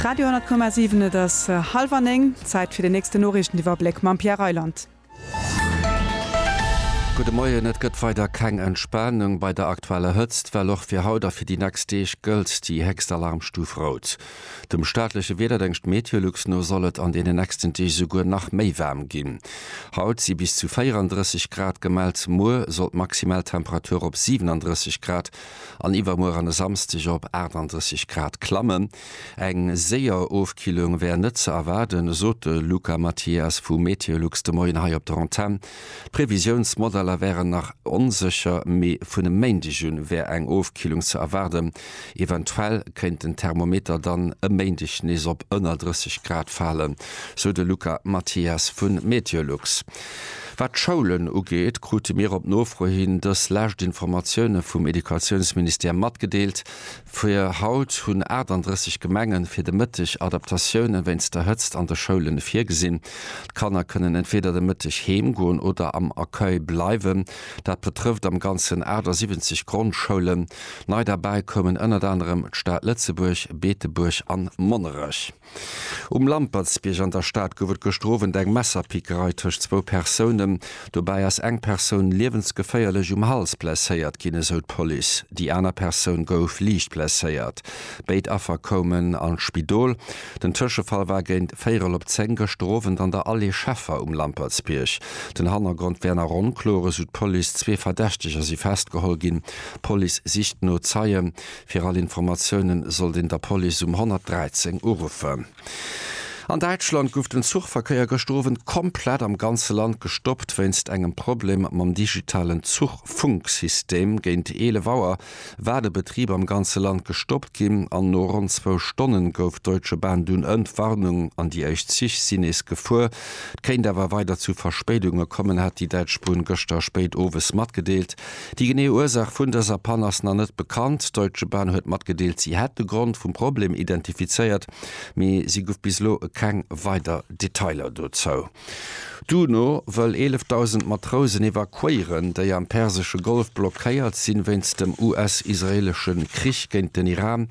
Radio,7 Et ass hallwer néng, Zäit fir den nächsten Noriichteniwwerbléck mam Pierre Reyland. Gudde Moien, Et gëtt weider keng Entspanung bei der aktueller Hëtzt. Well och fir haut a fir déi nächst Deeg gëllt déi héchst Alarmstuf Rout. Dem staatleche Wiederdéngscht Meteolux no soll et an deenen nächsten Deeg esouguer nach méi waarm ginn. Haut si bis zu 34 Grad gemellt, muer soll d'maximal Temperatur op 37 Grad an iwwermuer an e Samsdeg op 38 Grad klammen. Eng séier Ofkillung wär net ze erwaarden, sot de Luca Mathias vu Meteolux de Moien hei op der Antenn. D'Previsiounsmodeller wären nach onsécher, mee vun e Méindeg un wär eng Ofkillung ze erwaarden. Eventuell kéint den Thermometer dann e Méindeg nees op ënner 30 Grad falen, sou de Luca Mathias vu Meteolux. Wat d'Schoulen ugeet, krute mir op Nofro hin dës lescht Informatioune vum Educatiounsministère matgedeelt. Fir haut hunn 38 Gemenge fir de Mëtteg Adaptatioune wéinst der Hëtzt an de Schoule virgesinn. D'Kanner kënnen entweeder de Mëtteg heem goen oder am Accueil bleiwen. Dat betrëfft am Ganzen 78 Grondschoulen. Nei derbäi koumen ënnert anerem d'Stad Lëtzebuerg, Beetebuerg an Monnerech. Um Lampertsbierg an der Stad gouf et gëschter Owend eng Messerpickerei tëscht zwou Persounen. Dobäi ass eng Persoun liewensgeféierlech um Hals blesséiert ginn, esou d'Police. Déi aner Persoun gouf liicht blesséiert. Béid Affer koumen an d'Spidol. Den Tëschefall war géint véierel op zéng gëschter Owend an der Allée Scheffer um Lampertsbierg. Den Hannergrond wär nach onkloer, esou d'Police. Zwee Verdächteger si festgeholl ginn. D'Police sicht no Zeien. Fir all Informatiounen sollt een der Police um 113 uruffen. An Däitschland gouf den Zuchverkéier gëschter Owend komplett am ganze Land gestoppt wéinst engem Problem mam digitalen Zuchfunksystem. Géint 11 Auer war de Betrib am ganze Land gestoppt ginn an no ronn zwou Stonne gouf d'Deutsche Bahn dunn Entwarnung an déi éischt Zich sinn nees gefuer. Et kéint awer weider zu Verspéidunge kommen, hat déi däitsch Bunn gëschter spéit owes matgedeelt. Déi genee Ursaach vun dëser Pann ass nach net bekannt. D'Deutsche Bahn huet matgedeelt, si hätt de Grond vum Problem identifizéiert, mee si guff bis elo keng weider Detailer dozou. D'UNO wëll 11.000 Matrousen evakuéieren, déi am persesche Golf blockéiert sinn, wéinst dem US-israeelesche Krich géint den Iran.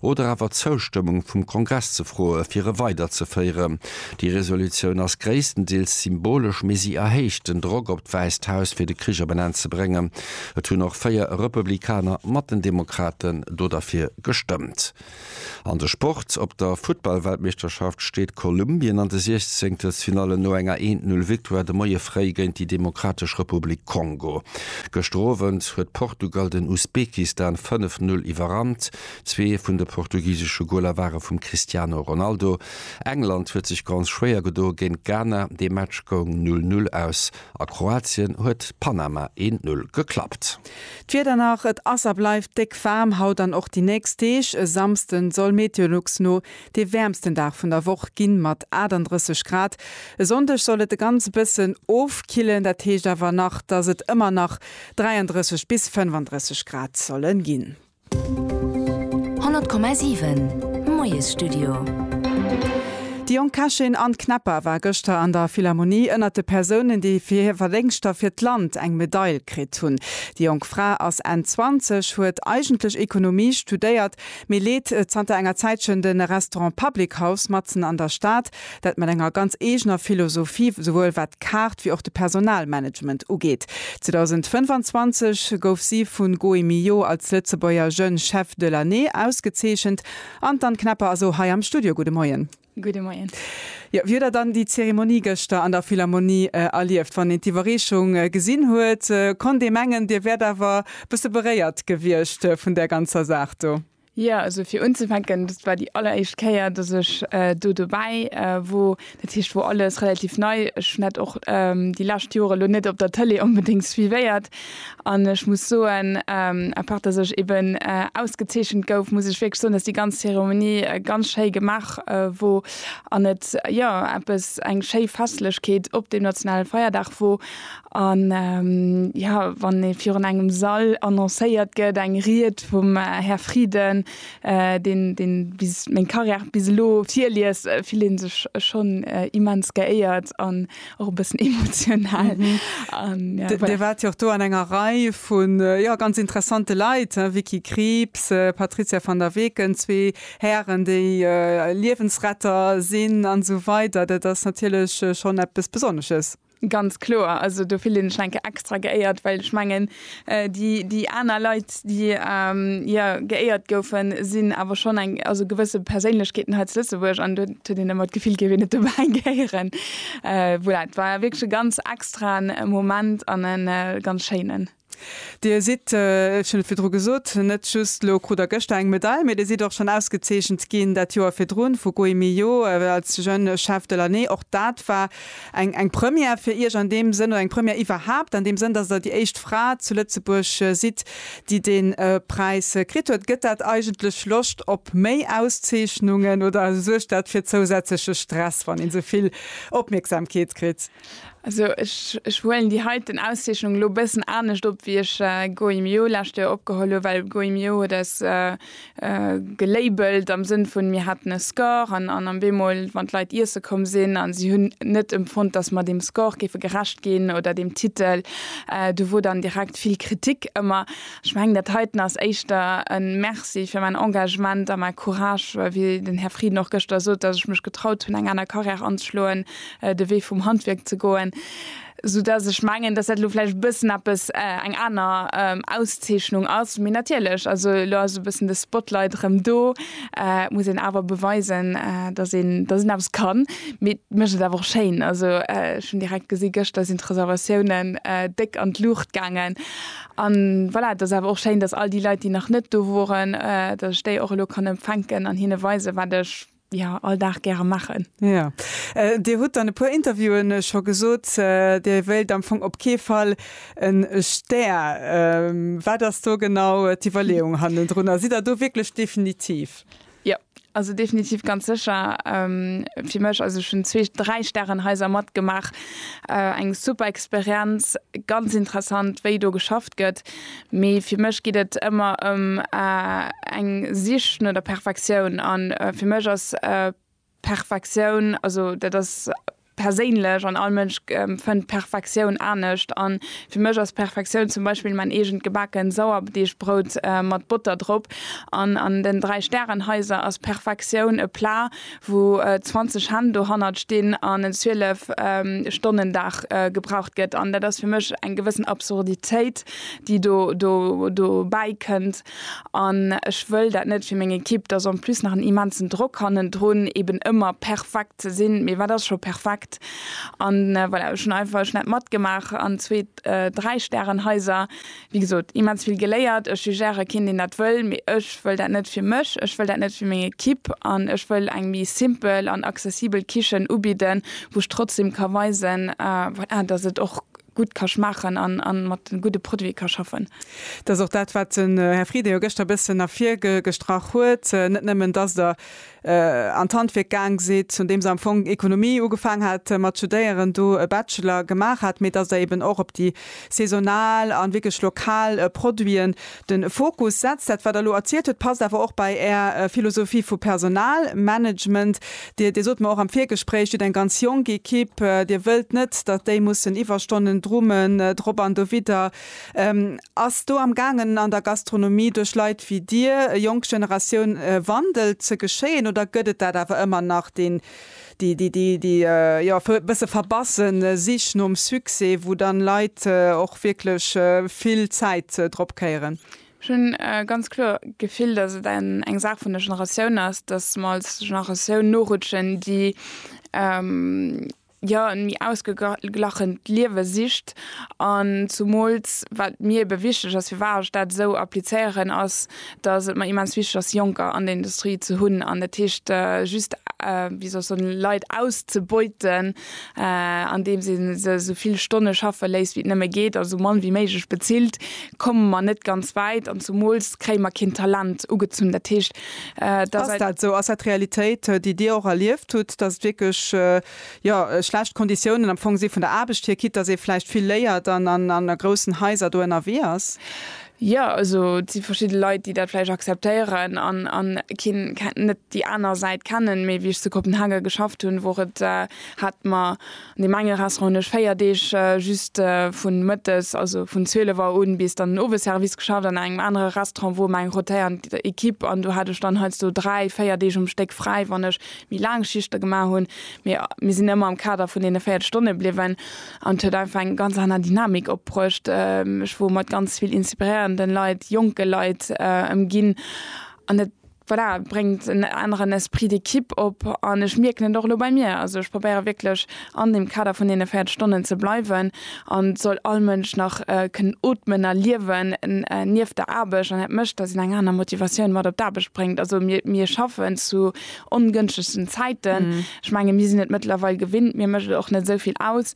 oder awer d'Zoustëmmung vum Kongress ze froe fir e weiderzeféiere. Déi Resolutioun ass gréisstendeels symbolesch, mee si erhéicht den Drock op d'Wäisst Haus fir de Krich op en Enn ze bréngen. Et hunn och véier Republikaner mat den Demokraten do derfir gestëmmt. An de Sport, Op der Futtballweltmeeschterschaft steet Kolumbien an de Siechzenkelsfinalle no enger Eent-Null-Victoire de Moie fréi géint déi Demokratesch Republik Kongo. Gëschter Owend huet Portugal den Usbekistan 5-Null iwwerrannt. Zwee vun de portugisesche Goler ware vum Cristiano Ronaldo. England huet sech ganz schwéier gedo géint Ghana, de Match goung 0, 0 aus a Kroatien huet Panama 1, 0 geklappt. D'Wieder nach, Et ass a bleift déck waarm haut an och déi nächst Deeg. E Samsde soll Meteolux no dee wäermsten Dag vun der Woch ginn, mat 38 Grad. E Sonndeg soll et e ganz bëssen ofkillen, dat heescht awer nach, dass et ëmmer nach 33 bis 35 Grad solle ginn. 100,7 Moiesstudio. De Jong Käschen, Anne Knepper, war gëschter an der Philharmonie ënnert de Persounen, déi fir hir Verdéngschter fir d'Land eng Medail kritt hunn. Déi jonk Fra ass Enn 20, huet eigentlech Ekonomie studéiert, mee leet zanter enger Zäitchen de Restaurant Public House matzen an der Stad. Dat mat enger ganz eegener Philosophie, souwuel wat d'Kaart wéi och de Personalmanagement ugeet. 2025 gouf si vu Goemio als Lëtzebuerger Jeune Chef de l'année ausgezeechent. An d'Anne Knapper ass o hei am Studio. Gudde Moien. Gudde Moien. Jo, wéi huet Der dann déi Zeremonie gëschter an der Philharmonie erlieft? Wann een d'Iwwerreechung gesinn huet, konnt ee mengen, Dir wäert awer e bësse beréiert gewiescht vun där ganzer Saach do. Jo, also fir unzefänken, dat war déi alleréischt Kéier, datt ech do dobäi wor. Dat heescht, wor alles relativ nei. Ech hunn dat och déi lescht Joer elo net op der Tëlee onbedéngt suivéiert. An ech muss soen, à part datt ech eben ausgezeechent gouf, muss ech wierklech soen, datt déi ganz Zeremonie ganz schéi gemaach wor an et, jo, eppes, eng schéi Festlechkeet op deem nationale Feierdag wor. A jo, wann ee virun engem Sall annoncéiert gëtt, eng Ried vum Här Frieden, deen deen bis meng Carrière bis elo virliest, fillt ee sech schonn immens geéiert an och e bëssen emotional. Dir waart jo och do an enger Rei vu jo ganz interessante Leit, Vicky Krieps, Patrizia van der Weken, zwee Hären, déi Liewensretter sinn an esou weider. Dat ass natierlech schonn eppes Besonnesches. Ganz kloer, also do fillen ech enke extra geéiert, well ech mengen déi déi aner Leit, déi jo geéiert goufen, sinn awer schonn eng also gewësse Perséinlechkeeten hei zu Lëtzebuerg an do huet een ëmmer d'Gefill, géif een net dobäi gehéieren. Voilà, et war wierklech e ganz extraen Moment an e ganz schéinen. Dir sidd, ech hunn et virdru gesot, net just elo krut Der gëschter eng Medail, mä Dir sidd och schonn ausgezeechent ginn dat Joer virdrun vu Gui Millot als Jeune Chef de l'année. Och dat war eng Première fir Iech an deem Sënn, oder eng Première iwwerhaapt an deem Sënn, datt Der déi éischt Fra zu Lëtzebuerg sidd, déi dee Präis kritt huet. Gëtt dat eigentlech Loscht op méi Auszeechnungen oder suergt dat fir zousätzleche Stress, wann een esou vill Opmierksamkeet kritt? Also ech huelen déi heiten Auszeechnung elo e bëssen anescht op, wéi ech Goemio lescht Joer opgeholl hu, well Goemio huet eis gelabelt am Sënn vun, mir haten e Score an an am Bemol, wann d'Leit iesse komm sinn a si hunn net empfonnt, dass mer deem Score géife gerecht ginn oder deem Titel, do wor dann direkt vill Kritik ëmmer. Ech mengen, dat heiten ass éischter e Merci fir mäin Engagement a mäi Courage, wéi den Här Frieden och gëschter sot, dass ech mech getraut hunn, eng aner Carrière anzeschloen, de Wee vum Handwierk ze goen, sou dass ech mengen, dass dat elo vläicht e bëssen eppes, eng aner Auszeechnung ass. Mee natierlech, also elo ass e bëssen de Spotlight erëm do, et muss een awer beweisen, dass een, dass een eppes kann. Mee et mécht et awer och schéin. Also ech hunn direkt gesi gëschter sinn d'Reservatiounen déck an d'Luucht gaangen. An voilà, et ass awer och schéin, dass all déi Leit, déi nach net do woren, dass ech déi och elo kann empfänken an hinne weisen, wat ech, jo all Dag gäre maachen. Jo, Dir hutt an e puer Interviewen scho gesot, Dir wéilt am Fong op kee Fall e Stär. Wat ass do genau d'Iwwerleeung hannendrunner? Sidd Der do wierklech definitiv? Jo, also definitiv ganz sécher fir mech. Also ech hunn zwee, dräi Stärenhaiser matgemaach, eng super Experienz, ganz interessant wéi do geschafft gëtt. Mee fir mech geet et ëmmer ëm eng Sich no der Perfektioun. An fir mech ass Perfektioun, also dat ass perséinlech an all Mënsch fënnt Perfektioun anescht. An fir mech ass Perfektioun zum Beispill mäin eegent gebaken Sauerdeegbrout mat Botter drop. An an den 3 Stärenhaiser ass Perfektioun e Plat wou 20 Hänn dohannert stinn an en 12 Stonnen Dag gebraucht gëtt. An dat ass fir mech eng gewëssen Absurditéit, déi do dobäi kënnt. An ech wëll dat net fir meng Ekipp, dass en plus nach en immensen Drock hannendrun, eeben ëmmer perfekt ze sinn. Mee wat ass scho perfekt? An voilà, ech hunn einfach net matgemaach an zwee, dräi Stärenhaiser Wéi gesot, immens vill geléiert. Ech jugéiere keen, deen dat wëll, mee ech wëll dat net fir mech, ech wëll dat net fir meng Ekipp an ech wëll eng méi simpel an accessibel Kichen ubidden, wou ech trotzdem ka weisen, voilà, dass et och gutt ka schmaachen a mat gudde Produite ka schaffen. Dat ass och dat, wat den Här Frieden jo gëschter e bëssen ervirgestrach huet, net nëmmen, dass Der an d'Handwierk gaang sidd, un deem se am Fong Ekonomie ugefaang hat mat studéieren, do e Bachelor gemaach hat, mee dass Der eben och op déi saisonal an wierklech lokal Produiten den Fokus setzt. Dat wat Der elo erzielt hutt, passt awer och bei Är Philosophie vu Personalmanagement. Dir, Dir sot mer och am Virgespréich, Dir hutt eng ganz jonk Equipe, Dir wëllt net, datt déi mussen Iwwerstonnen drummen, drop an dowidder. Ass do am gaangen an der Gastronomie duerch Leit wéi Dir, jonk Generatioun, e Wandel ze geschéien oder gëtt et dat awer ëmmer nach, deen, déi, déi, déi, déi jo e bësse verbassen Sich nom Succès, wou dann Leit och wierklech vill Zäit drop kéieren? Ech hunn ganz kloer d'Gefill, dass et eng Saach vun der Generatioun ass, dass mer als Generatioun norutschen, déi, jo en méi ausgeglachent Liewe sicht an zumools wat mir ebe wichteg ass, firwat ech dat esou applizéieren, ass dass et mer immens wichteg ass Jonker an der Industrie ze hunn an dat heescht just, wéi soll ech soen, Leit auszebeuten an deem se se esou vill Stonne schaffe léisst wéi et nëmme geet a esou mann wéi méiglech bezilt, komme mer net ganz wäit an zumools kréie mer keen Talent ugezunn. Dat heescht. Ass dat esou? Ass dat d'Realitéit, déi Dir och erlieft hutt, datt et wierklech jo schlecht Konditiounen am Fong si vun der Aarbecht hier, quitte datt ee vläicht vill léiert an an a groussen Haiser do ënnerwee ass? Jo, also et si verschidde Leit, déi dat vläicht akzeptéieren an an keen net déi aner Säit kennen. Mee wéi ech zu Kopenhagen geschafft hunn, wor et hat mer Deem enge Restaurant hunn ech véier Deeg just vun mëttes, also vun 12 Auer un, bis dann den Owesservice geschafft. An engem anere Restaurant wor mer eng rotéierend Ekipp an do hat ech dann heiansdo dräi, véier Deeg um Stéck fräi, wann ech méi laang Schichte gemaach hunn. Mee mir sinn ëmmer am Kader vun deene 40 Stonne bliwwen an et huet einfach eng ganz aner Dynamik opbruecht. Ech wor mat ganz vill inspiréierende Leit, jonke Leit ëmginn an et Voilà, et bréngt en aneren Esprit d'équipe op an ech mierken et och elo bei mir. Also ech probéiere wierklech an deem Kader vun deene 40 Stonnen ze bleiwen an et soll all Mënsch nach kënnen otmen a liewen nieft der Aarbecht an dat mécht, dass een eng aner Motivatioun mat op d'Aarbecht bréngt. Also mir, mir schaffen zu ongënschtegsten Zäiten. Ech menge mir sinn et mëttlerweil gewinnt, mir mécht et och net esou vill aus.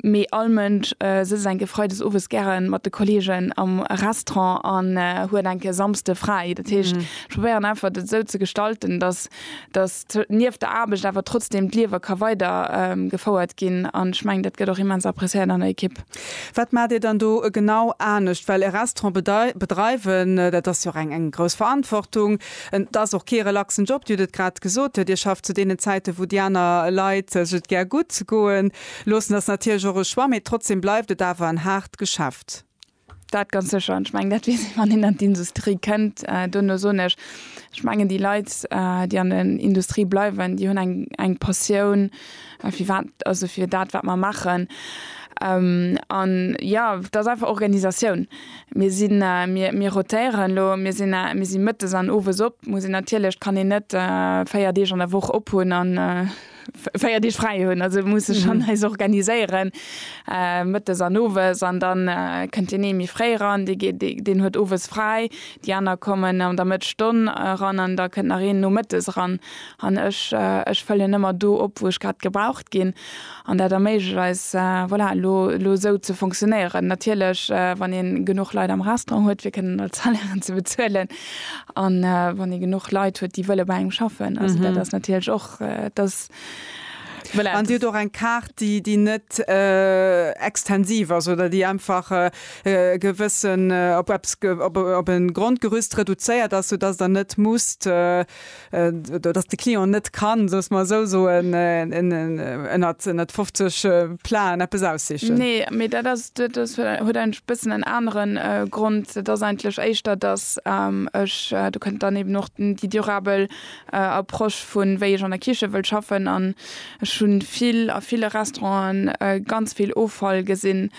Mee all Mënsch sëtzt enke Freides owes gären mat de Kollegen am Restaurant an huet enke Samsde fräi. Dat heescht, ech probéieren einfach dat esou ze gestalten, dass dass nieft der Aarbecht awer trotzdem d'Liewe ka weider gefouert ginn. An ech mengen, dat gëtt och immens appréciéiert an der Ekipp. Wat maacht Dir dann do genau anescht? Well e Restaurant bedreiwen, dat ass jo och eng eng grouss Verantwortung. Et ass och kee relaxen Job. Dir hutt et grad gesot, Dir schafft zu deenen Zäiten, wou déi aner Leit sech et gär gutt goen. Loossen ass natierlech och e Choix, mee trotzdem bleift et awer en haart Geschäft. Dat ganz sécher. An ech mengen, dat weess een, wann een an d'Industrie kënnt. Duerno soen ech, ech mengen, déi Leit, déi an der Industrie bleiwen, déi hunn eng, eng Passioun, firwat, also fir dat, wat mer maachen. An jo, et ass einfach Organisatioun. Mir sinn, mir, mir rotéieren elo. Mir sinn, mir si mëttes an owes op. Muss een natierlech, kann een net véier Deeg an der Woch ophunn an, 4 Deeg fräi hunn, also muss sech schon eis organiséieren äh mëttes an owes an dann kënnt deen ee méi fréi ran, dee geet deen huet owes fräi, déi aner kommen an der Mëtt Stonn ran an da kënnt nach een nomëttes ran an ech ech fëllen ëmmer do op wou ech grad gebraucht ginn an dat erméiglecht eis voilà elo elo esou ze funktionéieren. Natierlech wann ee genuch Leit am Restaurant huet fir kënnen all d'Salairen ze bezuelen an wann ee genuch Leit huet déi wëlle bei engem schaffen, also dat ass natierlech och Dass voilà. An Dir hutt och eng Kaart, déi, déi net extensiv ass oder déi einfach e gewëssen, op eppes, op, op e Grondgerüst reduzéiert ass, soudass Der net musst, oder dass de Client net kann, soll ech mol esou soen, en ënnert, ënnert 50 Planen eppes aussichen. Nee, mee dat ass, dat ass, huet eigentlech e bëssen en anere Grond. Dat ass eigentlech éischter, dass ech, do kënnt dann eben och déi durabel Approche vu wéi ech an der Kiche wëll schaffen an ech hunn vill a ville Restauranten ganz vill Offall gesinn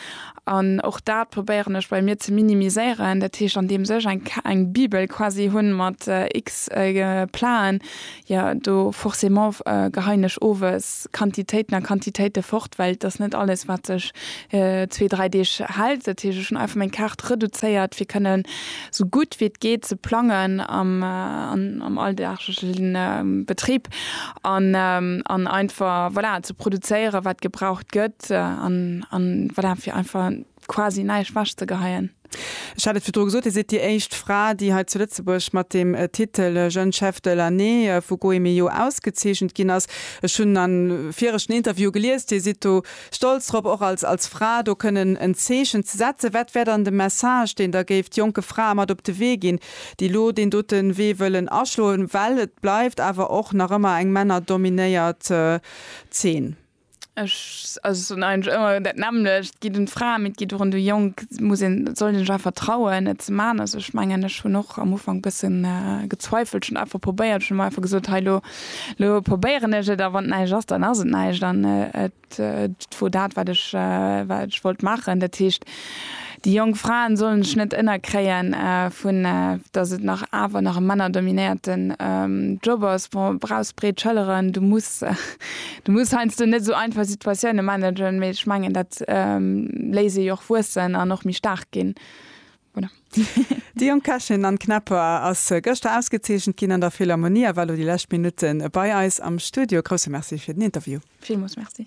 an och dat probéieren ech bei mir ze minimiséieren. Dat heescht an deems ech eng eng Bibel quasi hunn mat X Platen jo do forcément geheien ech owes Quantitéiten a Quantitéite fort well et ass net alles wat sech zwee, dräi Deeg hält. Dat heescht, ech hunn einfach meng Kaart reduzéiert, fir kënne sou gutt wéi et geet ze plangen am am alldaaglechen Betrib an an einfach, voilà, ze produzéieren, wat gebraucht gëtt an an voilà, fir einfach quasi näischt wechzegeheien. Ech hat et virdru gesot, Dir sidd déi éischt Fra, déi hei zu Lëtzebuerg mat dem Titel Jeune Chef de l'année vu Goemio ausgezeechent ginn ass. Ech hunn a viregten Interviewe gelies, Dir sidd do stolz drop, och als Fra do kënnen en Zeechen ze setzen. Wat wär dann de Message, deen Der géift jonke Frae mat op de Wee ginn, déi elo deen dote Wee wëllen aschloen, well et bleift awer och nach ëmmer eng männerdominéiert Zeen? Ech also soen eigentlech ëmmer dat nämmlecht, et geet un d'Fra, mee et geet och un de Jong, et muss een, et soll een sech einfach trauen et ze man. Also ech mengen ech hunn och am Ufank bëssen gezweifelt, ech hunn einfach probéiert, ech hunn mer einfach gesot hei lo, lo probéieren ech et a wann et näischt ass, dann ass et näischt an et wor dat wat ech wat ech wollt maachen. Dat heescht Déi jonk Fraen sollen sech net ennerkréien vun dass et nach awer nach e männerdominéierten Job ass. Bon brauchs breet Schëlleren, du muss du muss heiansdo net esou einfach Situatiounen managen, mee ech mengen dat léisst ee jo och wuessen an och méi staark ginn. Voilà. Déi jonk Kächin Anne Knepper ass gëschter ausgezeechent ginn an der Philharmonie a war elo déi lescht Minutten bei eis am Studio. Grousse Merci fir den Interview. Villmools Merci.